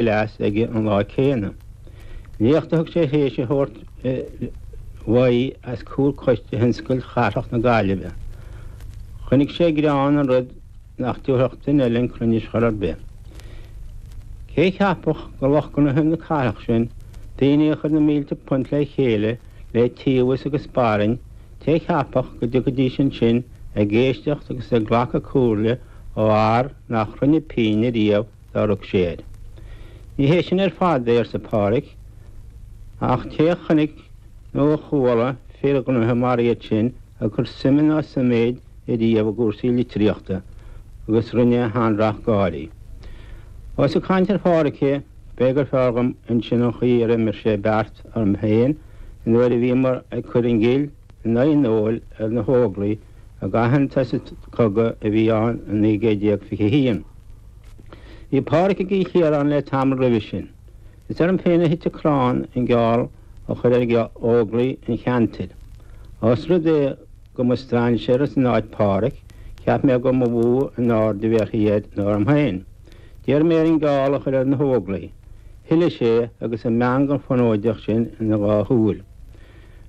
glas aige an lá céanna. Léacht a thug sé théis a thabhairt uaidh os comhair coiste thionscail chathrach na Gaillimhe. Chonaic sé greann i rud nach dtabharfadh duine eile chun cruinnis chor ar bith. Cé a cheapfadh go lucht gnoithe na cathrach sin, daoine a chuir na mílte punt le chéile le tíobhas agus barainn, cé a cheapfadh go dtiocfaidís ansin ag éisteacht agus ag glacadh comhairle ó fhear nach rinne pínn ariamh, d'amharc sé air. Ní hé sin ar fad é arsa Pádhraic, ach cé a chonnaic nó a chuala fir ghnoithe mar iad sin ag cur suime ná suiméid ariamh i gcúrsaí litríochta agus rinne a shean-racht gáirí. Ós ag caint ar Phádhraic é, b'fhéidir gur fearr dhom insin an chaoi ar imir sé beart orm féin an uair a bhíomar ag cur an ghill i n-aghaidh an óil ar na hÓglaigh i gcaitheamh an chogaidh a bhí ann i naoi gcéad déag fiche h-aon. Bhí Pádraig i gCill Chiaráin le tamall roimhe sin. Is orm féin a thit an crann an geall a chur ar Óglaigh an cheantair. Ós rud é go mba strainséara san áit Pádraig, cheap mé go mba mhó an aird a bhéarfaí air ná orm féin. D'iarr mé air an geall a chur ar na hÓglaigh. Thoiligh sé, agus an meangadh fonóideach sin ina dhá shúil.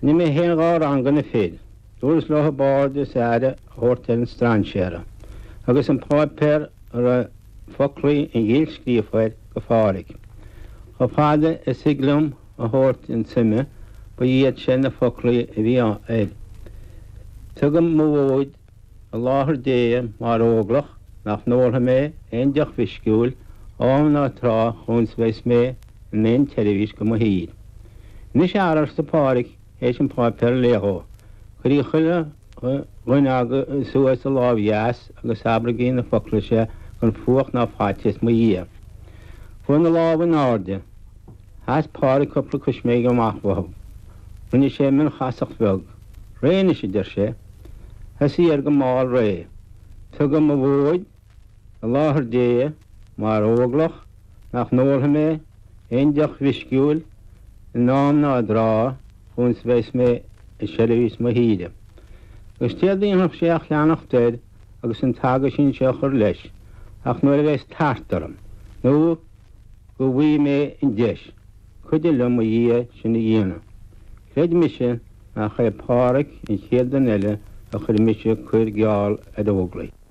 Rinne mé féin dhá rang go na fir. Dúras leothab aird is aire a thabhairt ar an strainséara. Thugas an páipéar a raibh foclaí an ghill scríofa air go Phádraig. Chomh fada is thig liom a thabhairt chun suime, ba iad sin na foclaí a bhí air, Tugaim mo mhóid i láthair Dé mar óglach nach n-ólfaidh mé aon deoch mheisciúil, am ná tráth, chúns bheas mé in aon tseirbhís go mo thír. Anois, a fheara, arsa Pádraig, théis an páipéar a léamh dhó. Cuirigí chuile dhuine agaibh suas a lámh dheas agus abraigí na foclaí seo gan fuacht ná faitíos i mo dhiaidh. Chuaigh na lámha in airde. Sheas Pádraig cupla coisméig amach uathu. Rinne sé mionchasacht bheag. Réidh anois, a deir sé. Thosaigh air go mall réidh. Tugaim mo mhóid. I láthair Dé, mar óglach, nach n-ólfaidh mé aon deoch mheisciúil in am ná i dtráth chúns bheas mé i seirbhís mo thíre. Agus céard a dhéanfadh sé ach leanacht air agus an t-aguisín seo a chur leis, Ach nuair a bheas tart orm, nó go bhfaighidh mé an deis, cuidigh liom, a Dhia, sin a dhéanamh. Creid mise nach é Páraic an chéad duine eile a chuir mise ag cur geall ar óglaigh.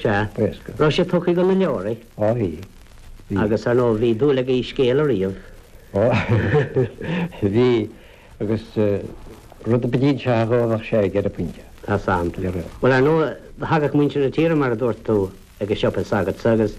Sea. Éasca. Raibh sé tugtha go na leabhraí? Á, bhí. Bhí. Agus, ar ndóigh, bhí dúil aige i scéal a ríomh. Á, bhí. Agus rud ar bith a d'inseofá dhó, bheadh sé aige ar an bpointe. Tá san. Bhuel, ar ndóigh, thagadh muintir na tíre, mar a dúirt tú, ag an siopa s'agatsa agus